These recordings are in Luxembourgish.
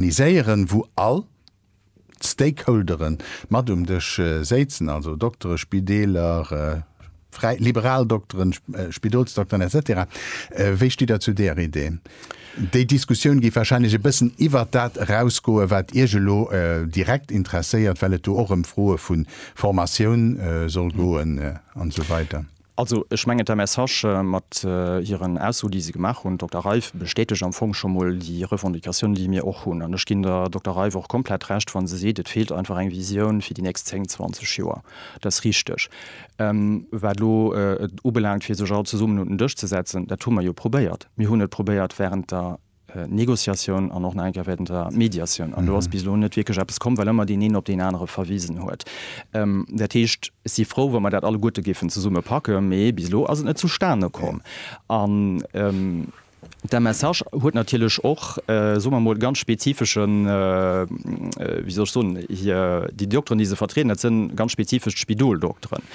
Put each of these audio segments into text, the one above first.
organiséieren, wou all d'Stakeholdere mat um Dësch séizen, also Doktere, Spideeler, fräi, liberal Dokteren, Spidolsdokteren etc. Wéi stitt Der zu deeër Idee? Déi Diskussioun géif wahrscheinlech e bëssen iwwert dat erausgoen, wat Iech elo direkt interesséiert, well et do och ëm Froe vu Formatioun soll goen an esou weider. Also ech mengen, d'Mme Sage mat hiren Ausso, déi se gemaach hunn, Dokter Reiff, bestätegt am Fong scho mol déi Revendicatioun, déi mir och hunn. An ech ginn der Dokter Reiff och komplett Recht, wa se seet, et feelt einfach eng Visioun fir déi nächst zéng, zwanzeg Joer. Dat ass richtig. Wat elo et ubelaangt, fir sech all zesummen un den Dësch ze setzen, dat hu mer jo probéiert. Mir hunn et probéiert während der Negociatioun an och nach eng Kéier während der Mediatioun. An do ass bis elo net wierklech eppes komm, well ëmmer deen een op deen anere verwisen huet. Dat heescht, ech si frou, wa mer dat alleguerte géifen zesumme packen, mee bis elo ass et net zustane komm. An d'MSH huet natierlech och, soe mer emol, ganz spezifeschen, wéi soll ech soen, hir, déi Dokteren, déi se vertrieden, dat sinn ganz spezifesch d'Spidoldokteren.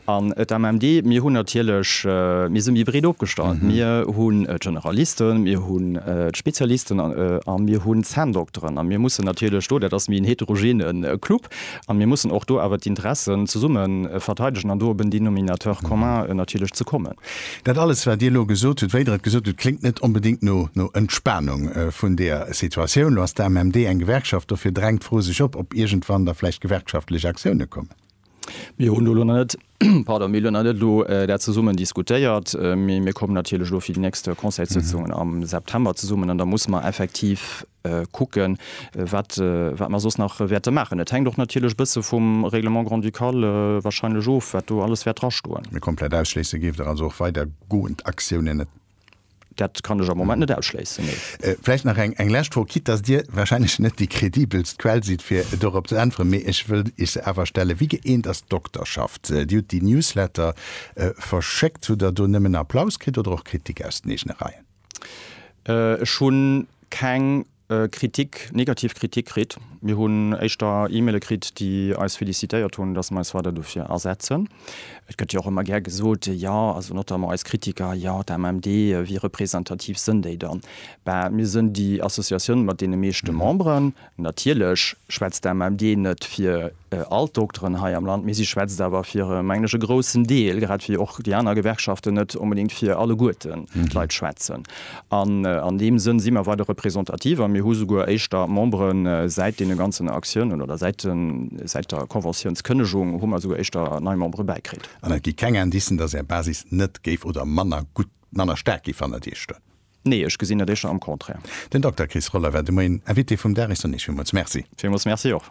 An d'AMMD, mir hunn natierlech, mir si méi breet opgestallt. Mir hunn d'Generalisten, mir hunn d'Spezialisten a mir hunn d'Zänndokteren. A mir mussen natierlech do, dat ass méi en heterogene Club, a mir mussen och do awer d'Interessen zesumme verteidegen an do op en Dénominateur commun natierlech ze kommen. Dat alles, wat Dir elo gesot hutt, wéi Der et gesot hutt, kléngt net onbedéngt no Entspanung vun där Situatioun. Elo ass d'AMMD eng Gewerkschaft, dofir drängt d'Fro sech op, ob iergendwann da vläicht gewerkschaftlech Aktioune kommen. Mir hunn elo nach net, pardon, mir hunn elo nach net elo dat zesummen diskutéiert, mee mir kommen natierlech elo fir déi nächst Conseilssëtzungen am September zesummen an da musse mer effektiv kucken, wat wat mer soss nach wäerte maachen. Et hänkt och natierlech e bësse vum Règlement grand-ducal wahrscheinlech of, wat do alles wäert drastoen. Mee komplett ausschléisse géift Der also och weidergoend Aktiounen net? Dat kann ech am Moment net ausschléissen, nee. Vläicht nach eng lescht Fro, quitte dass Dir wahrscheinlech net déi kredibelst Quell sidd, fir dorop ze äntweren, mee ech wëll Iech se awer stellen, Wéi gëeent ass d'Dokterschaft? Dir hutt déi Newsletter verschéckt. Hutt Der do nëmmen Applaus kritt oder och Kritik aus den eegene Reien? Ech hu keng Kritik, negativ Kritik kritt. Mir hunn éischter E-Maile kritt, déi eis félicitéiert hunn, dass mer eis weider dofir asetzen. Et gëtt jo och ëmmer gär gesot, jo, also notamment eis Kritiker, jo, d'AMMD, wéi representativ sënn déi dann? Bah, mir sënn déi Associatioun mat deene meeschte Memberen. Natierlech schwätzt d'AMMD net fir. all d'Dokteren hei am Land, mee si schwätzt awer fir, mengen ech, e groussen Deel, grad wéi och déi aner Gewerkschaften net onbedéngt fir alleguerten d'Leit schwätzen. An an deem Sënn si mer weider representativ a mir hu souguer éischter Memberen. Säit deene ganzen Aktiounen oder säit den, säit der Konventiounskënnegung hu mer esouguer éischter nei Membere bäikritt. An et gi keng Indicen, dass Är Basis net géif oder manner gutt, manner staark géif hannert Iech stoen? Nee, ech gesinn dat éischter am Contraire. Den Dokter Chris Roller war de Moien Invité vum Dag. Ech soen Iech villmools Merci. Villmools Merci och.